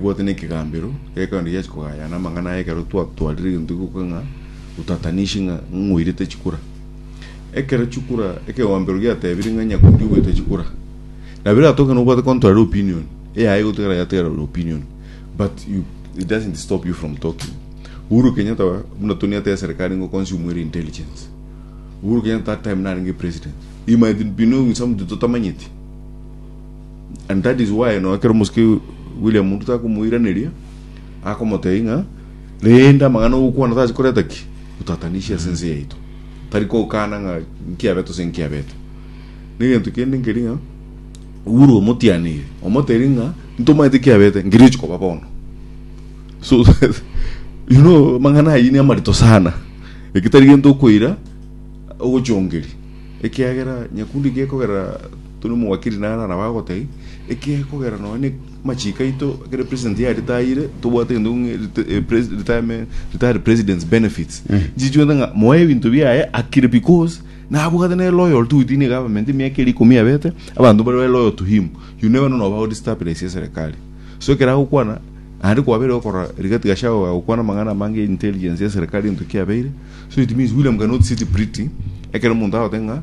Bwate nekegambero gekeonde giachia kogaya na amang'ana aye ekero twatwarire egento gioka ng'a utatanishi ng'a ng'oirete chikura. Ekero chikura ekegambero giatebire ng'a Nyakundi ogoeta chikura. Na birato ekero nobwate contrary opinion eyaye gotigara yatigara ore opinion but you, it doesn't stop you from talking. Uhuru Kenyatta wa- buna Tony ateba eserikari ngo consume ere intelligence. Uhuru Kenyatta that time narenge president. He might be knowing something totamanyeti. And that is why no ekero omosike William Ruto akomoiraneria akomotebia ng'a rende amang'ana ogokwana tase koreta ki botatanishi ase ense yaito tari kokana ng'a nkiabete ase nkiabete na egento kende nkeri ng'a Uhuru omotianire omotebia ng'a ntomanyete kiabete ngerio ochi koba bono so you know amang'ana ayio ni amarito sana ekitari gento okoira ogochongeria ekiagera nyakundi gekogera Tony omogwakiri nare araba agotebie, ekiagera kogera nonya ne machiko aito ekero president ya retire tobwate gento ng'e rete- eh, pres- retirement retire president's benefits nchichwete ng'a moe ebinto biaye akire because nabwate ne loyal to within the government emiaka eri ikomi yabete abanto mbare bare loyal to him you never know noba odestabilize eserekari so ekero agokwana naende kwabeire gokora Rigathi Gachagua agokwana amang'ana amange ya intelligence ya serekari egento kiabeire so it means William cannot sit pretty ekero omonto agote ng'a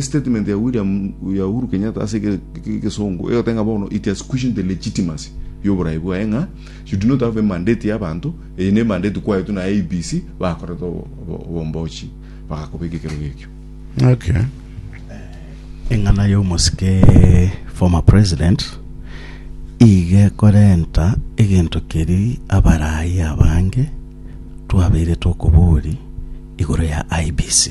Statement ya William ya Uhuru Kenyatta ase egesongo egotenga bono it has questioned the legitimacy y'oborai bwaye ng'a you do not have a mandate ya abanto eye ne mandate kwaetwe na IBC bakorete obombochi bagakobeka ekero gekio Okay. Eng'ana y'omosike former president iga ekorenta egento keri abaraai abange twabeire tokobori igoro ya IBC.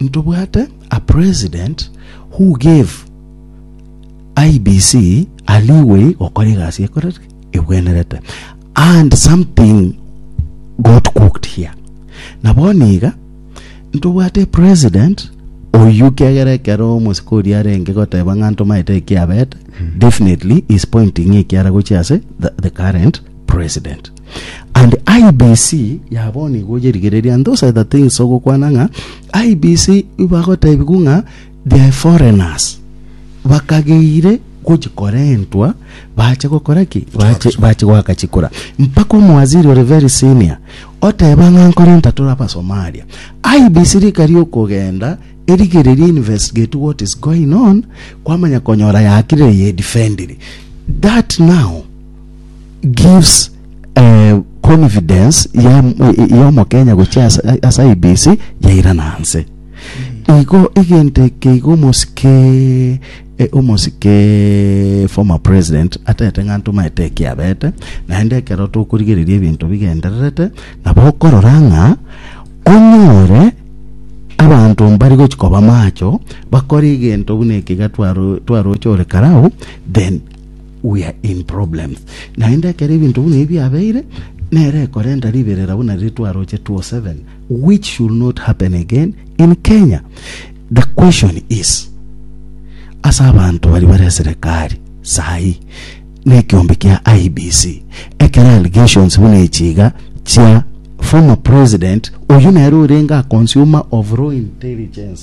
Ntobwate a president who gave IEBC a leeway gokora egasi ekorereke ebwenerete and something got cooked here. Na bono iga ntobwate a president oyio kiagera ekero omosiko oria arenge goteba ng'a ntomaete ekiabete definitely is pointing ekiara gochia ase the, the current president. And IBC ya bono igo oyerigereria and those are the things ogokwana ng'a IBC ibagotebigwa ng'a they are foreigners bakageire gochikorentwa bache gokora ki bache bache goaka chikura mpaka omwaziri ore very senior oteba ng'a nkorenta tore abasomalia IBC rika riokogenda erigererie investigate what is going on kwamanya konyora yakire ye defendiri that now gives eh, confidence ya ya omokenya gochia ase ase IBC yairana nse igo egento eke igo omosike eh, omosike former president atete ng'a ntomaete ekiabete naende ekero tokorigereria ebinto bigendererete nabo okorora ng'a onyore abanto mbari gochi koba macho bakore egento buna eke iga twaro- twaroche ore karao then We are in problems. Naende ekero ebinto buna ebi biabeire, nere ekorenta riberera buna riria twaroche 2007 which should not happen again in Kenya. The question is, ase abanto bari bare eserekari sahi na ekiombe kia IBC ekero allegations buna echi iga chia former president oyu nere orenge a consumer of raw intelligence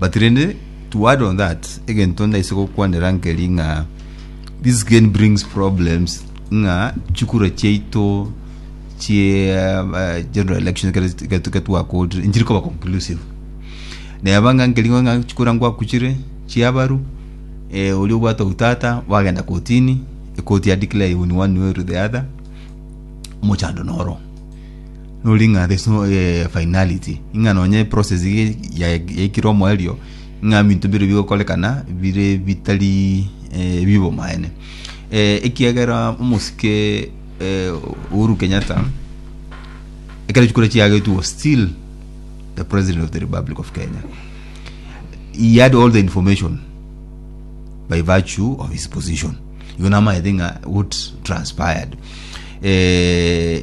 But rende to add on that egento ndaise gokwanera nkeri ng'a this again brings problems ng'a chikura chiaito chie uh, general election ketwakootire nchiri koba conclusive neba ng'a nkeri ng'a chikura ngwakuchire chiabaru eh, oria obwate utata wagenda kotini ekoti ya declare you in one way or the other mochando noro nori ng'a there's no eh, finality ing'a nonye process ye- ya- yaikire omoerio ing'a binto bire bigokorekana bire bitari eh, bibo maene eh, ekiagera omosike eh, Uhuru Kenyatta ekero chikura chiagetwe was still the president of the republic of Kenya he had all the information by virtue of his position igo namaete ng'a what transpired eh,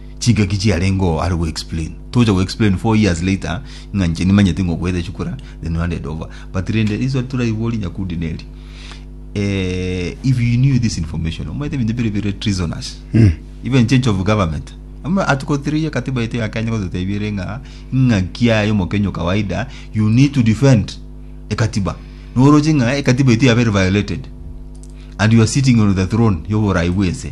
Chingaki chiarenge oo are go explain. Tocha go explain four years later ng'a inche nimanyete ng'a okoete chukura then you handed over. But rende riswali toraiborie Nyakundi neri, eh, if you knew this information, omanyete ebinto bire bire treasonous. Even change of government. Ama article 3 ya katiba yetu ya Kenya gototebia ere ng'a ing'aki yaye omokenya o kawaida you need to defend ekatiba. Noroche ng'a ekatiba yetu yabere violated and you are sitting on the throne yoborai bw'ense.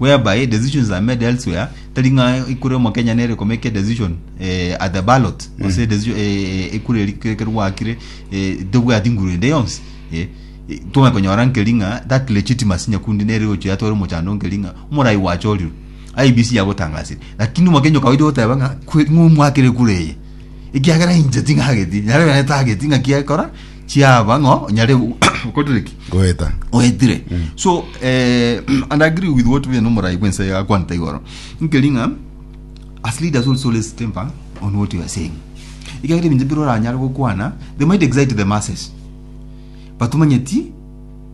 whereby decisions are made elsewhere tari ng'a ekura y'omokenya nere komeka decision eh, at the ballot gose mm. decision eh, ekura eri kere gwakire eh, tobwati nguru ende yonsi eh, eh, tong'e konyora nkeri ng'a that legitimacy nyakundi nere gochia yatwara omochando nkeri ng'a omorai gwachorirwe IBC yagotangasire lakini omokenya okawaidi goteba ng'a kwe- ng'o mwakire ekura eye ekiagera inche ting'ageti nyare bene tageti ng'a kiakora chiaba ng'o onyare gokorire ki goeta oetire so eh, and I agree with what bene omorai bwense yakwanete igoro nkeri ng'a as leaders also let's temper on what you are saying ikagera ebinto bire oranyare gokwana they might excite the masses but omanyeti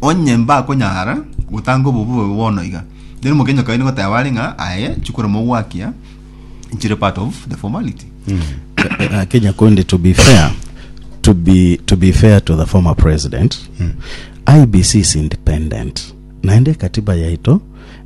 Onye mbakonyara gotanga obobe obo bono iga, then omokenyi okaini goteba are ng'a aye chikoro mogwakia chire part of the formality. Uh, Kenya Kondi, to be fair, to be to be fair to the former president, IBC is independent. Naende katiba yaito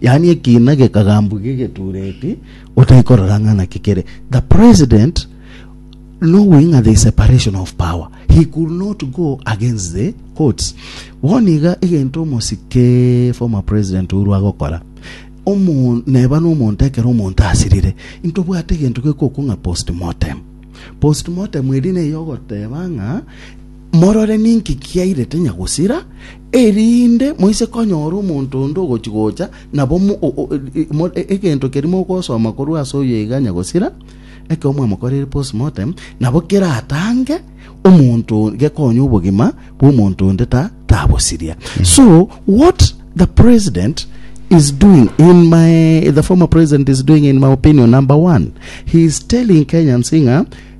Yaani ekiina gekagambwa gegetureti otaikorora ng'a naki kere. The president knowing ng'a there is separation of power he could not go against the courts. Bono iga egento omosike former president Uhuru agokora omo neba nomonto ekero omonto asirire intobwate egento gekokwa ng'a postmortem postmortem eri neye ogoteba ng'a morore ninki kiairete nyagosira Erinde moise konyora omonto onde ogochia gocha, nabo egento keria mogosoma korwa ase oyo iganya gosira ekero mwamokoreire postmortem, nabo keratange omonto gekonye obogima bw'omonto onde tabosiria. Mm. So what the president is doing in my the former president is doing in my opinion number one he is telling Kenyans ng'a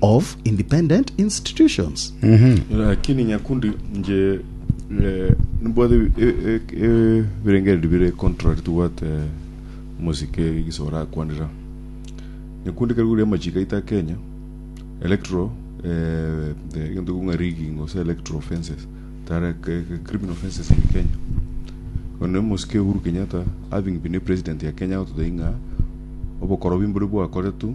of independent institutions. Lakini nyakundi nje eh, nibwate ebi- e- e- e- ebirengererio bire contract tobwate omosike iso orakwanera nyakundi kari goria amachiko aito a kenya electro eh, eh, egento kong'a rigging gose electro offences tara ke- ke- criminal offences in kenya one omosike uhuru kenyatta having been a president ya kenya agototebia ng'a obokorobi mbore bwakoretwe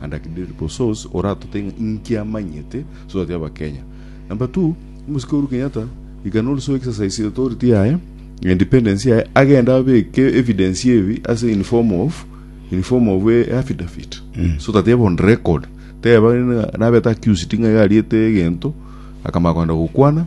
And I can read it source oratote ng'a inki amanyete so that abakenya number two omusike Uhuru Kenyatta he can also exercise authority yaye independence yaye agenda abeke evidence yebi ase in form of in form of a affidavit so that ebe on record teba ng'a nabete accused ng'a iga ariete egento akamanya kogenda gokwana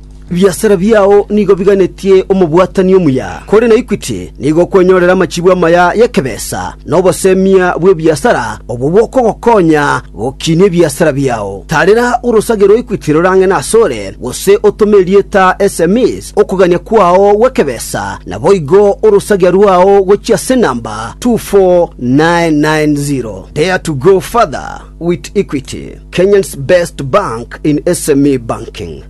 Ebiasara biao nigo biganetie omobwatani omuya, kore na Equity nigo okwenyorera amachibu amaya y'ekebesa na obosemia bw'ebiasara obwo bokogokonya gokinia ebiasara biao. Taarera orosage rwa Equity rorang'ene asore, gose otome erieta sms okogania kwao gw'ekebesa, naboigo orosagia rwao gochia ase enamba 24990. Dare to go further with Equity, Kenyan's best bank in SME banking.